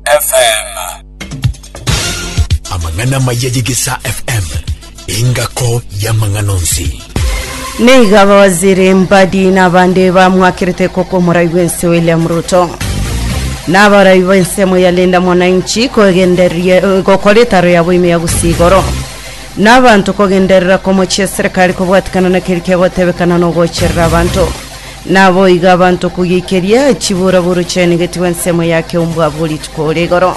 FM. Amang'ana amaya ye Gesa FM, engako y'amang'ana onsi. Niga abawaziri mbadi n'abande bamwakerete koko omorai bw'ense William Ruto n'abarai b'ense moyalinda mwananchi kogenderia gokora etaro yabo ime ya gusii igoro n'abanto kogenderera komochia eserikari kobwatikana na keri kegotebekana n'ogocherera abanto Naboigo abanto kogeikeria chiburaburu chiaino igetigwe ensemo ya keumbwa abwo rituko rigoro.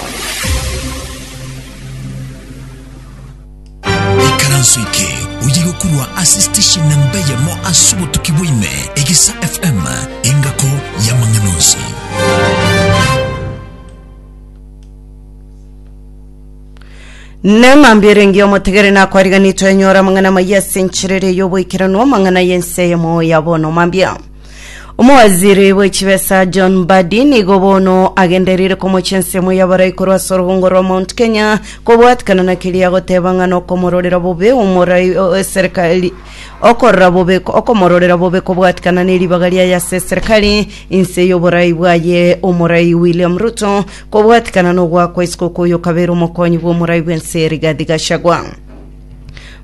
ikaranso eke oyigokurwa ase station namba eyemo ase obotuki bwaime egisa fm engako yamang'ana onsi Neng'ambi erenge omotegere nakwariganitwe enyora amang'ana amaya ase enchera ere y'oboikeranu amang'ana y'ense eyemo ya bono mambia. Omowaziri bw'echibesa John Mbadi nigo bono agenderire komochia ense eyemo y'abarai korwa ase orobongo rwa Mount Kenya kobwatikana na keria agoteba ng'a nokomororera bobe omorai o- eserikali okorora bobe okomororera bobe kobwatikana neribaga riaye ase eserikali inse y'oborai bwaye omorai William Ruto Kobwatikana n'ogoa kwa isiko kw'oyo okabeire omokonyi bw'omorai bw'ense Rigathi Gachagua.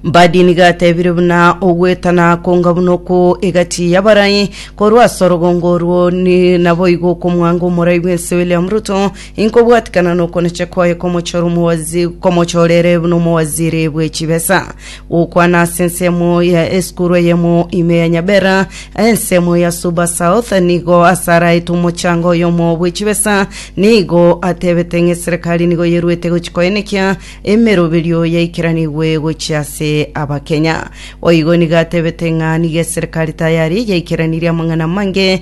Mbadi nigo atebire buna ogwetana konga buna oko egati y'abarai korwa ase orogongo orwo ni naboigo okomwanga omorai bw'ense William Ruto inkobwatikana n'okonecha kwaye komochora omowaziri komochorere buna omowaziri bwe chibesa Gokwana ase ensemo ya esukuru eyemo ime ya Nyabera, ensemo ya Suba South, nigo asaraete omochango oyomo bwe chibesa, nigo atebete ng'a eserekari nigo yeruete gochia koenekia emeroberio yaikeranigwe gochia ase Abakenya. Boigo nigo atebete ng'a nigo eserekari tayari yaikeranirie amang'ana amange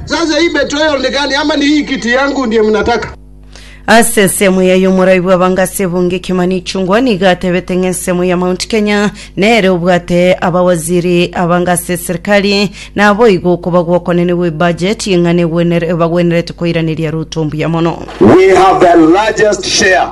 Sasa hii betrayal ni gani ama ni hii kiti yangu ndiye mnataka? Ase ensemo yaye omoraai bw'abanga ase ebunge Kimani Ichung'wa nigo atebete ng'a ensemo ya Mount Kenya nere obwate abawaziri abanga ase eserikari naboigo okoba gw'okonene gw'ebudget ng'a negwenere bagwenerete koiraneria Ruto mbuya mono. We have the largest share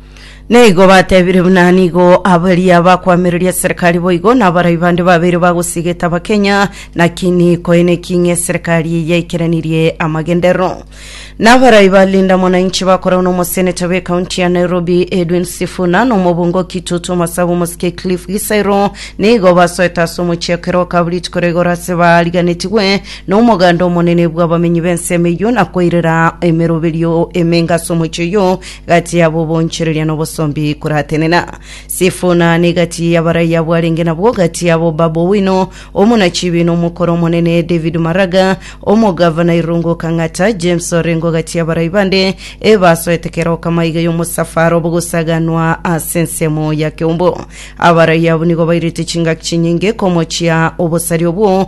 Naigo batebire buna nigo abaria bakwamereria eserekari boigo na abarai bande babere bagosigeta Abakenya nakini koeneki ng'a eserekari eye yaikeranirie amagenderero. Na abarai ba Linda Mwananchi bakoragwa na omoseneta be kaunti ya Nairobi Edwin Sifuna na omobunge o Kitutu Masabu Mosike Cliff Gisairo nigo basoete ase omochie ekero bakaba rituko ria igoro ase bariganetigwe na omoganda omonene bw'abamenyi b'ensemo eyio na koirera emeroberio emenge ase omochie oyio Gati yabo obonchereria na obosombi koratenena. Sifuna ne gati y'abarai abwo arenge nabwo, gati yabo Babu Owino, omonachibi na omokoro omonene, David Maraga, omogavana Irungu Kang'ata, James Orengo gati y'abarai bande ebasoete kera okama iga y'omosafara obo gosaganwa ase ensemo ya Keumbu. Abarai abwo nigo bairete chingaki chinyinge komochia obosari obwo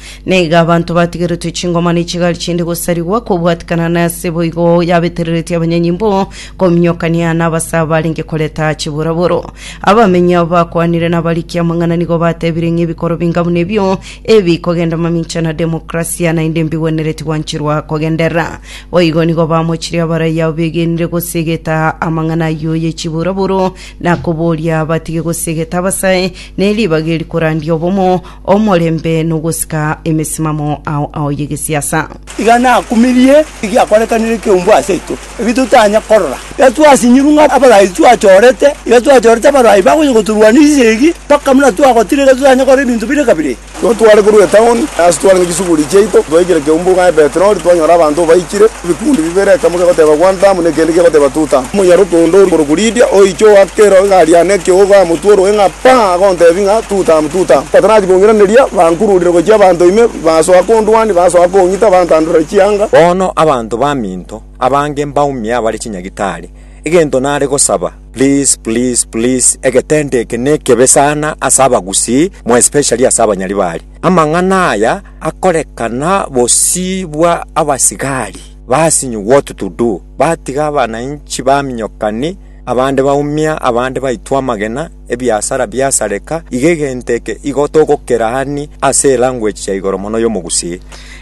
Naiga abanto batigeretwe chingoma ne chigari chinde gosarigwa kobwatikana nase boigo yabetereretie abanyanyimbo kominyokania nabasa barenge koreta chiboraboro. Abamenyi abo bakwanire nabariki amang'ana nigo batebire ng'a ebikoro binga buna ebio ebi kogenda mamincha na demokrasia naende mbigwenereti gwanchirwa kogenderera. Boigo nigo bamochirie abaraiyo abo begenire gosegeta amang'ana ayio ye chiboraboro na koboria batige gosegeta abasae ne ribaga eri korandia obomo Omorembe nogosika emesimamo ao ao y'egesiasa. Iga nakumirie egiakorekanire ekeumbu aseito, eki totanya korora. Iga twasinyiru ng'a abarai twachorete, iga twachorete abarai bagocha gotorwania chisegi, mpaka buna twagotire iga totanya korora ebinto bire kabire. Igo tware korwa etaoni, ase twarenge chisuguri chiaito, twaikire keumbu ng'a Ebeterori, twanyora abanto baikire. Ebikundi bibere, ekemo kegoteba Guantanamo, na ekende kegoteba Tutank. Omonyaroke onde okorokwa Lidia, oiche ogoaka ero egari yane ekeogo, amotwe orue ng'a paa, agontebia ng'a, Tutank, Tutank, batanati kong'iraneria, bankururire gochia abanto ime, basoa kondwania, basoa kong'ita, bantandorera chianga. Bono abanto baminto abange mbaumia abare chinyagitari, egento nare gosaba, please, please, please, egetendo eke nekebe sana ase abagusii, more especially ase abanyaribari. Amang'ana aya. akorekana bosii bwa abasigari, basinywa gwotu tudu, batiga abanainchi baminyokani, abande baumia, abande baitwa amagena, ebiasara biasareka, iga egento eke igo togokeraania ase elanguage ya igoro mono y'omogusii.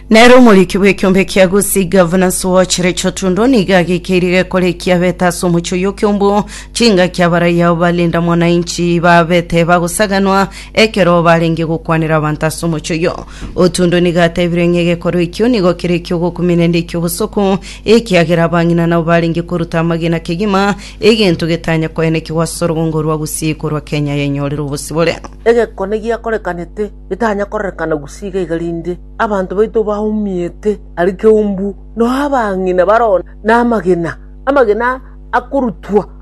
Nere omoriki bw'ekiombe kia Gusii, Governance Watch, Recho Tundo nigo agekeire gekoreki abete ase omochie oyio kiombu chingaki abaraia balinda mwananchi babete bagosaganwa Ekero barenge gokwanera abanto ase omochie oyio, Otundo nigo atebire ng'a egekorwa ekio nigo kere ekiogokumia naende eki'obosoko, ekiagera abang'ina nabo barenge koruta amagena kegima, egento getanya koenekigwa ase orogongo rwa Gusii korwa Kenya yenyorere obosibore. Egekone giakorekanete getanya kororekana Gusii iga iga rinde abanto baito baumiete aria keumbu, nao abang'ina baroo namagena, amagena akorutwa.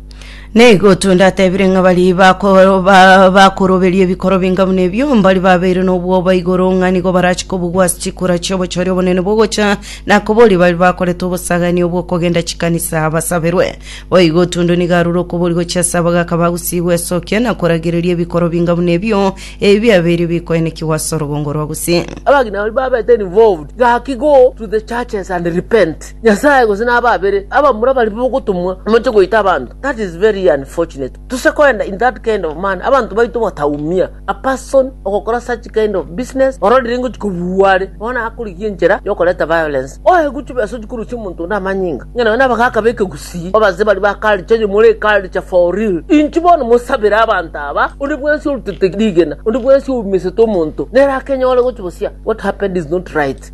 Naigo tondaatebirie ng'a baria bako- ba- bakoroberia ebikoro binga buna ebio mbari babeire nobwoba igoro ng'a nigo barache kobugwa ase chikura chi'obochore obonene bogocha na koboria baria bakorete obosagaani obw'okogenda chikanisa basaberwe. Boigo Tundu nigo arure okoboria gochia ase abagaka ba Gusii gwesokia na koragereria ebikoro binga buna ebio ebi biabeire bikoenekigwa ase orogongo rwa Gusii. Abagima baria babete involved gaki go to the churches and repent. Nyasae gose na ababere abamura baria bogotomwa moche goita abanto, that is very unfortunate. Tose koenda in that kind of manner abanto baito bataumia. A person ogokora such kind of business ororire ngochi kobua are bono akorigia enchera yokoreta violence. Oe gochia besa ochia korosia omonto onde amanyinga ng'a naye nabagaka b'ekegusii. Abase baria ba culture onye more culture for real inche bono mosabere abanto aba onde bwensi orutete rigena onde bwensi oumesete omonto nere akenyore gochia bosia what happened is not right.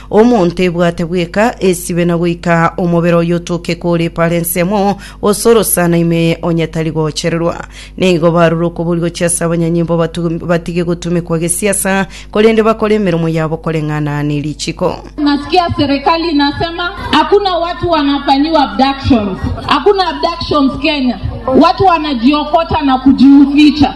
Omonto ebwate bweka esibe na goika omobere oye otoke kore pare ensemo, gose orosana ime eye onye tari gochererwa. Nigo barure okoboria gochia ase abanyanyimbo batu- batige gotumekwa gesiasa, korende bakore emeremo yabo koreng'ana ne richiko. Nasikia serikali inasema hakuna watu wanafanyiwa abductions. Hakuna abductions Kenya. Watu wanajiokota na kujiuficha.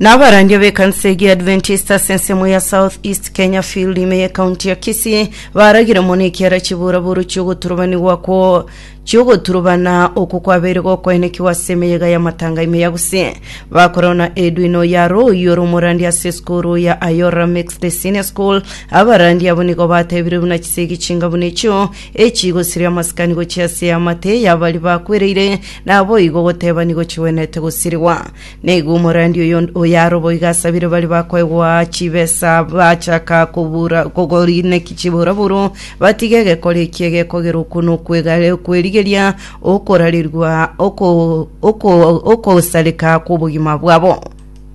na abarandia b'ekanisa egi Adventist ase ensemo ya South East Kenya Field ime ye county ya Kisii baragire mono ekiara chiburaburu chiogoturubanigwa kwo chiogoturubana oku kwabeire gokoenekigwa ase emeyega ya matanga ime ya Gusii bakoreo na Edwino ya Royo romorandi ase esukuru ya Ayora Mixed Senior School abarandi abo nigo batebire buna chisegi chinga buna echio echigosiria amasikani gochia ase amate yabari bakwereire nabo igo goteba nigo chigwenete gosirigwa Nigo omorandi oyonde oyaroboigo asabire baria bakoegwa chibesa bachaka kobura kogoriineki chiburaburo, batige egekori eki egekogera okwo na okwegare okwerigeria okorarerigwa oko oko okosareka kw'obogima bwabo.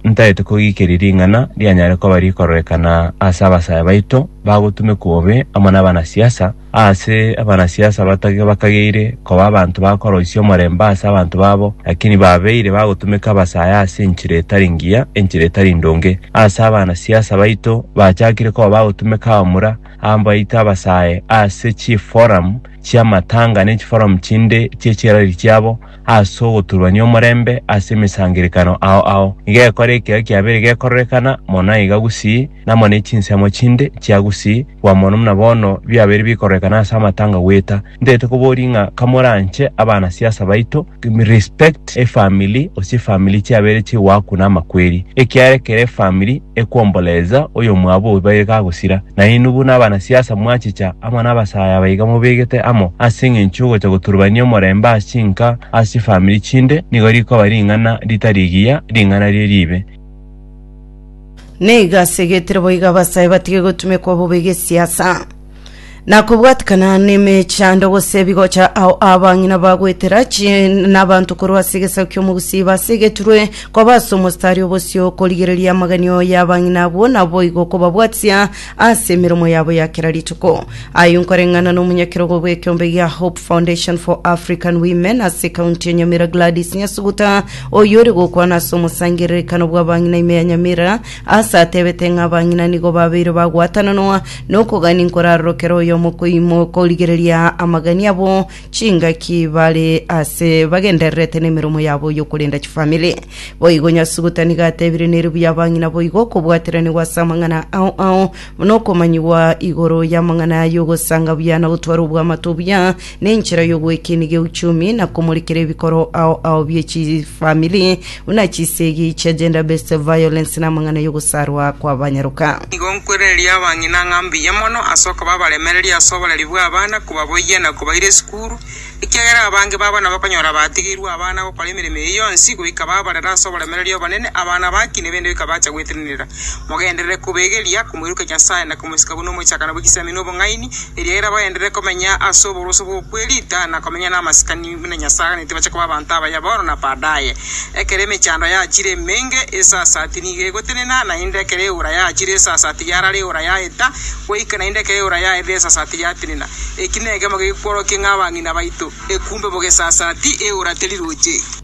Ntaete kogikeria ring'ana rianyare koba rikororekana ase abasaya baito bagotumekwa obe amo nabanasiasa, Aase abanasiasa abatage bakageire koba abanto bakoroisia omorembe aase abanto babo, lakini babeire bagotumeka abasae aase enchera etari ngiya, enchera etari ndonge. Aase abanasiasa baito bachakire koba bagotumeka abamura abaito abasae aase chiforamu chi'amatanga ne chiforamu chinde chie chirari chiabo, as'ogoturuania omorembe as'emesangerekano ao ao, igekora ekero kiabeire gekororekana mono iga gusii, namo ne chinsemo chinde chia gusii gwa mono muna bono biabeire bikororekana as'amatanga gweta. Ntaete koboria ng'a kamoranche abanasiasa baito, respect efamili gose efamili chiabeire chigoakuna amakweri, ekiara ekero efamili ekwomboleza oyomwabo obaire gagosira, Nainwe buna abanasiasa mwachicha amo nabasaayi abaiga mobegete amo ase engencho y'ogocha goturubania omorembe ase chinka ase chifamiri chinde, nigo rikoba ring'ana ritari rigiya, ring'ana rie riibe. Nigo ase egetire boiga abasaayi batige gotumekwa bobe gesiasa, na kobwatikana nemechando gose ebigocha ao abang'ina bagoetera chi nabanto korwa ase egesaku ki'omogusii iba ase egeturwe Koba ase omostari o bosio okorigereria amagenio y'abang'ina abwo, naboigo okobabwatisia ase emeromo yabo ya kera rituko. Aye nkoreng'ana nomonyakerogo bw'ekeombe gia Hope Foundation for African Women ase county ya Nyamira Gladys Nyasuguta oyio ore gokwana ase omosangererekano bw'abang'ina ime ya Nyamira ase atebete ng'a abang'ina nigo babeire bagwatananwa nokogania nkorarorokera oyomo koimo korigereria amagani abo chingaki bare ase bagendererete nemeromo yabo yokorenda chifamiri. Boigo Nyasugutani gatebire nere buya abang'ina boigo okobwaterania gwase amang'ana ao ao buna okomanyigwa igoro y'amang'ana y'ogosanga buya na gotwara obwamato buya nenchera y'ogwekeniga euchumi na komorikera ebikoro ao ao bie chifamiri Buna chisegi chia gender based violence namang'ana y'ogosarwa kwabanyaroka. Nigo nkwerereria abang'ina ng'a mbuya mono ase okoba abaremereria ase oboreri bw'abana, kobaboyia na kobaira esukuru, ekiagera abange babo nabakonyora batigeirwe abana gokora emeremo eye yonsi goika babarera ase oboremereria obonene abana aba ki nebendi goika bacha gwetenenera. Mogenderere kobegeria komoirokia Nyasae na komosika buna omochakano bw'egesaimero na obong'aini, eriagera bagenderere komenya ase oboruoti bw'okwerita na komenya namasikani. buna Nyasae aganeti bache koba abanto abaye bono na baadaye. Ekero emechando yachire emenge, esasati nigo egotenena, naende ekero eora yachire esasati yarara eora yaeta, goika naende ekero eora yaerire esasati yatenena. Eki negemo gekworokia ng'a abang'ina baito, ekumbe bogesasati, eora teriroche.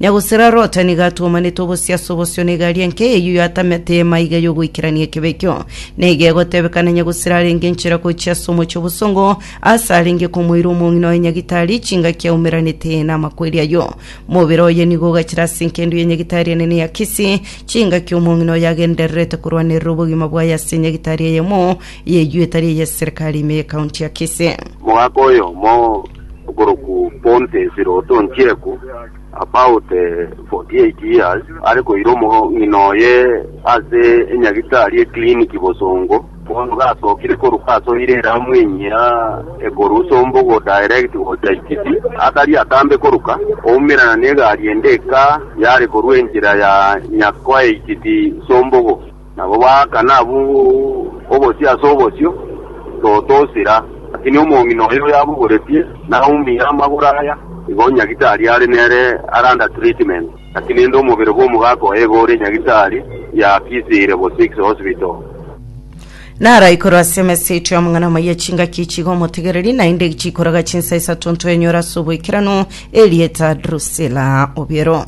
Na gose ra Lota nigo atwomanete obosiaso bosio na egari enke eyio yatamete ema iga y'ogoikerania ekebe ekio, na iga egotebeka nonye gose rarenge enchera gochia ase omochie obosongo, aase arenge komoira omong'ina oye nyagitari chingaki aumeranete namakweri ayio. Mobere oye nigo ogachire ase enkendo ya nyagitari enene ya Kisi, chingaki omong'ina oye agendererete korwanerera obogima bwaye ase nyagitari eyemo Y'eyieta ria y'eserikari ime y'ekaunti ya Kisii. Omogaka oyomo okorokwa Pontius Rotong'chieku, about 48 years, are koira omong'ina oye ase enyagitari eclinic bosongo, bono gasokire korwa asoire eramu enyia ekorwa Sombogo direct gocha Ikiti, atari atambe koruka, oumerana negari ende eka yare korwa enchera ya Nyakwae-Ikiti-Sombogo. Nabo baakana abwo obosio ase obosio, Toto osira, lakini omong'ina oyo yabogoretie naumia amagoro aya, igo Nyagisari are nere are under treatment, lakini inde omobere bw'omogaka oye iga ore Nyagisari y'akisire Bosix Hospital. Naro aikorwa ase emesa eito y'omong'ina omoyio echingaki echigo omotegereri, naende chikoraga chinsa isato ntwenyora ase oboikeranu, erieta Drusila obiero.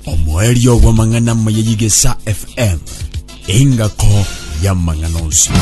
Omoerio bw'amang'ana maya y'Igesa FM, engako y'amang'ana onsi.